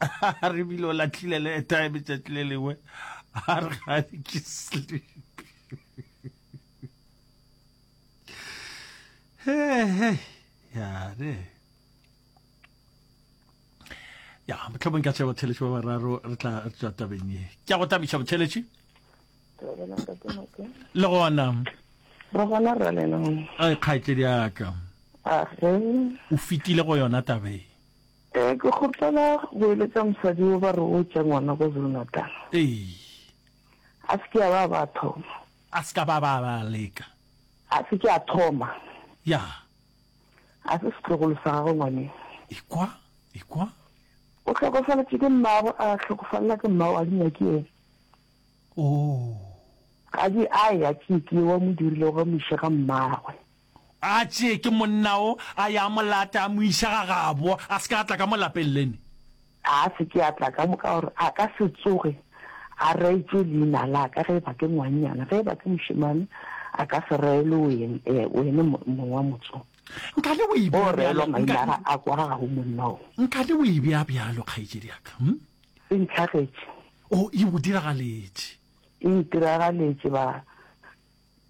a re bile o latlhile le time tšatši le lengwe a re gane ke sleep yare ya motlhomong ka tšha botheletši ba bararo re tla tswa tabeng ye ke ya go tabiša botheletši le gona re gona rra lenong a kgaetsedi yaka o fetile go yona tabeng Ee, ke kgopela go eletša mosadi yo ba re o tša ngwana kwa Zulu-Natal. Ee. A se ke a ba a ba a thoma. A se ka ba a ba a ba a leka. A se ke a thoma. Ya. A se setlogolo sa gagwe ngwaneng. Ekwa, ekwa. O hlokofaletše ke mmagwe, a hlokofalela ke mmagwe, ga di nyake yena. Oo. Ga di a ya, ke ke wa mo dirilego, ga mo iše ga mmagwe. A tšee ke monna o, a ye a mo late, a mo iša gagabo, a se ke a tla ka mo lapeng lene. A se ke a tla ka mo, ka gore a ka se tsoge a reetšwe leina la ka. Ge e ba ke ngwannyana, ge e ba ke mošemane, a ka se reelwe wene, ee, wene mong wa motse o. Nkane o e bea bjalo, nka. O reelwa maina a ga, a kwa gabo monna o. Nkane o e bea bjalo, kgaetšedi ya ka. Hm? Se ntlhagetše. Oh, e go diragaletše. E ntiragaletše, ba,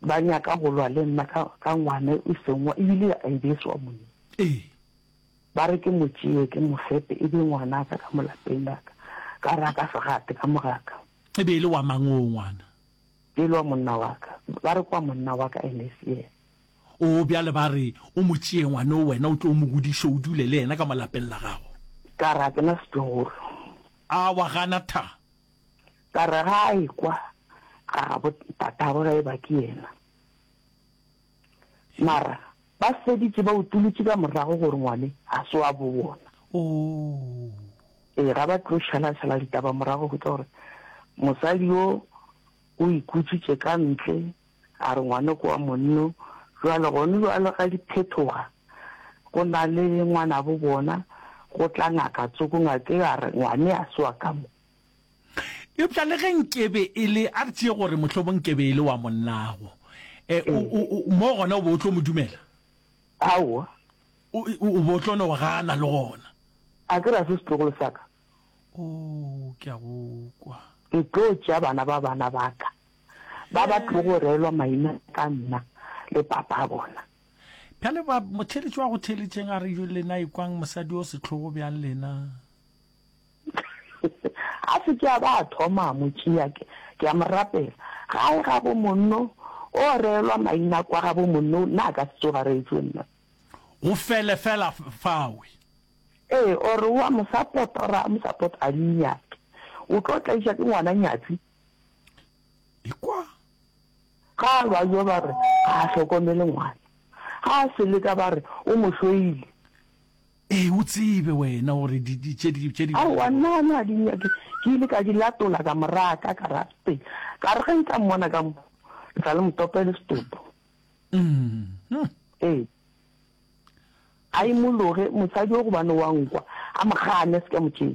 ba nyaka go lwa le nna ka, ka ngwana e seng wa, ebile a e be e se wa monna. Ee. Ba re ke mo tšee, ke mo fepe, e be ngwana ka ka mo lapeng la ka. Ka re a ka se gate ka moga ka. E be e le wa mang oo ngwana? E le wa monna wa ka. Ba re ke wa monna wa ka and e se yena. Oo, bjale ba re o mo tšee ngwana o, wena o tlo o mo godiše, o dule le yena ka mo lapeng la gago. Ka re a ke na setlogolo. A wa gana tha? Ka re ga a ekwa ga gabo tatabo ga e ba ke yena. Mara ba feditše ba utolotše ka morago gore ngwane ga se wa bo bona. Oh. Ee, ga ba tlo šalatšhala ditaba morago go tla gore mosadi yo o ikutšitše ka ntle A re ngwanoko wa monno, Bjale gone bjalo ga di phethoga, go na le ngwanabo bona, go tla ngaka tsoko ngake ya re ngwane a se wa ka mo. Eupša le ge nkebe e le, a re tšee gore mohlomong nkebe e le wa monnago, eh, o, o, o, mo gona o be o tlo mo dumela? Aowa. O, o, o be o tlo no gana le gona? A ke ra se setlogolo sa ka. Oo, ke a go kwa. Ke tlo tšea bana ba bana ba ka. ba ba tlogo reelwa maina ka nna le papa bona. Bjale ba motheeletši wa go theeletšeng a re yo lena ikwang mosadi o setlhogo bjang lena. a se ke a ba a thoma a mo tšea ke ke a mo rapela gae ga bo monno o reelwa maina kwa ga bo monno nna ka se tsoga reetswe nna go fele fela fawe ee ore wa mosapotora mosapotora a di nyake o tlo tlaiša ke ngwana nyatsi Ekwa. Ga a lwa yo ba re ga a hlokomele ngwana. Ga a se leka ba re o mo hloile. Ee, o tsebe wena gore di, di, tše di, tše di. Aowa, nna a ne a di nyake. Ke ile ka di latola ka moraga ka karabteng. Ka re ge nka mmona ka mo, ke tla le motope le setopo. Mm. Ee. A imologe, mosadi o gobane wa nkwa, a mo gane, a se ka mo tšea.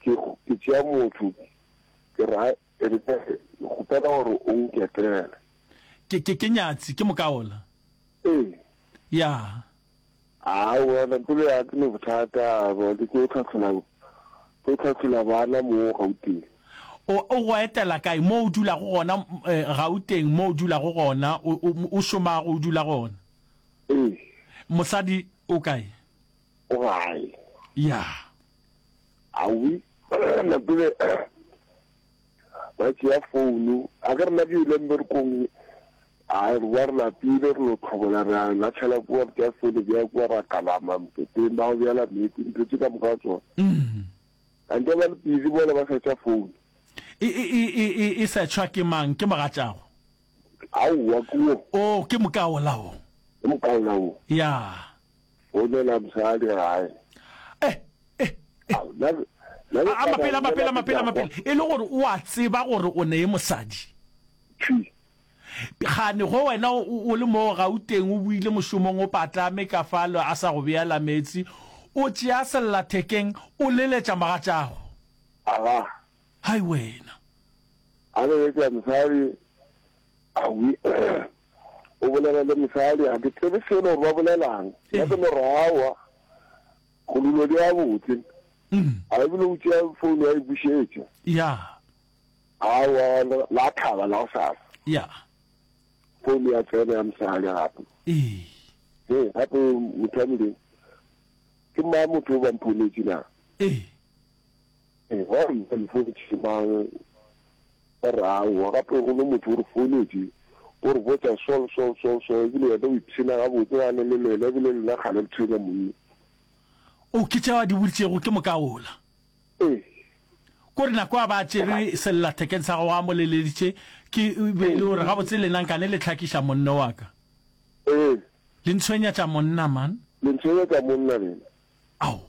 Ke, ke tšea motho, ke ra, ke re, ke kgopela gore o nketele. Ke, ke, ke nyatsi, ke mokaola. Ee. Ya. Aa, wena, pelo ya ke ne bothata, ba ke tlo tlhahlola, tlo tlhahlola bana mo Gauteng. O, o go etela kae? Mo o dulago gona, eh, Gauteng, mo o dulago gona, o, o, o šomago, o dula gona? Ee. Mosadi o kae? O gae. Ya. Awi, na tsebe, ba tšea founu, a ke rena ke ile mberkong, a re ba re lapile, re lo tlhobola, re a latlhela kua, re tšea founu, bea kua, ra kalama moketeng, ba go bjala meetse, ntho tše ka moka ga tsona. A nke ba le busy mola ba sa tša founu. E, e, e, e, e, e setšhwa ke mang? Ke mogatšago? Aowa, ke wo. Oh, ke moka wola wo. Ke moka wola wo. Ya. Founela mosadi gae. Eh, eh, eh. Ao, na re- na re A a tla mapele, a ba mapele, a bolela mapele, a ke tla mapele. E le gore o a tseba gore o ne e mosadi. Tšhi. Gane go wena o, o- o le mo Gauteng o buile mošomong o patlame ka falo a sa go beela meetse o tšea sellathekeng o leletša mogatšago. Aga, Hai wena! A leletša mosadi, Awi, o bolela le mosadi, ga ke tsebe selo gore ba bolela'ng. Nna ke morawa, go dilo di gabotse. A e bile o tšea founu ya e bušetša. Ya. Awa, la thaba la gosasa. Ya. Founu ya tsena ya mosadi gape. Ee. He, gape motho wa Modimo, ke mang motho o ba mphonetše na? Ee. Gomme mpotše mang o re aowa, gape gomme motho o re fouletše, o re botša Saul, Saul, Saul, Saul, ebile wena o ipshina gabotse ga ne le lena, ebile le nna kgale le tshwenya monna. O, ke tšeo a di boditšego, ke moka wola. Ee. Ko re nako a ba a tšere sellathekeng sa gagwe a mo leleditše, ke be e le gore gabotse lena nka ne le hlakiša monno wa ka. Ee. Le ntshwenyatša monna, man. Le ntshwenyatša monna lena. Ao.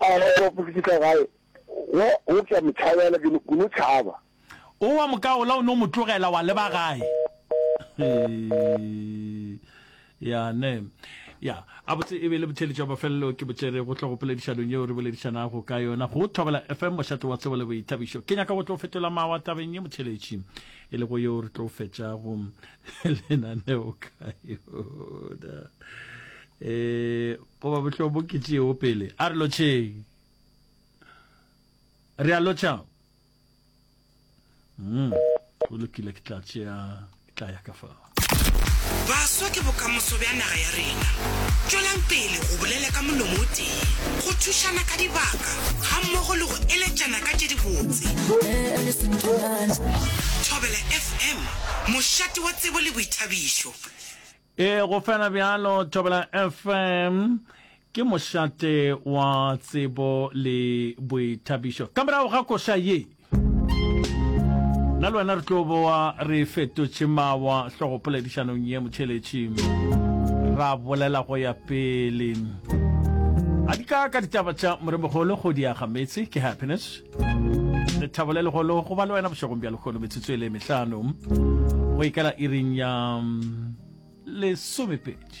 A re go ba fihla gae, wa opša motšhabela, ke no, ke no tšhaba. O wa mo kaola, o no mo tlogela, wa leba gae. ya ne ya a botse e be le botheletši wa mafelelo ke botšere go tlo go poledišanong yeo re boledišanago ka yona go thobela fm mošate wa tsebo le boithabišo ke nyaka go tlo fetola mawa tabeng ye motheletši e lego yeo re tlo fetšago lenaneo ka yona um Goba bohlo bo ke tšeego pele. A re lotšheng. Re a lotšha. Mm. Go lokile ke tla tšea ke tla ya ka fa. Baswa ke bokamoso bja naga ya rena. Tšwelang pele go bolela ka molomo o tee, go thušana ka dibaka gammogo le go eletšana ka tše dibotse. Thobela FM, mošate wa tsebo le boithabišo. E go fela bjalo, Thobela FM ke mošate wa tsebo le boithabišo. Ka morago ga koša ye, nna le wena re tlo boa re fetotše mawa hlogopoledišanong ye motšheletši, ra bolela go ya pele. A di ka ka ditaba tša moremogolo go diaga metse, ke Happiness. lethabo le legolo go ba le wena bošegong bja lekgono metsotso e le mehlano go ikela iring ya mm, lesomepedi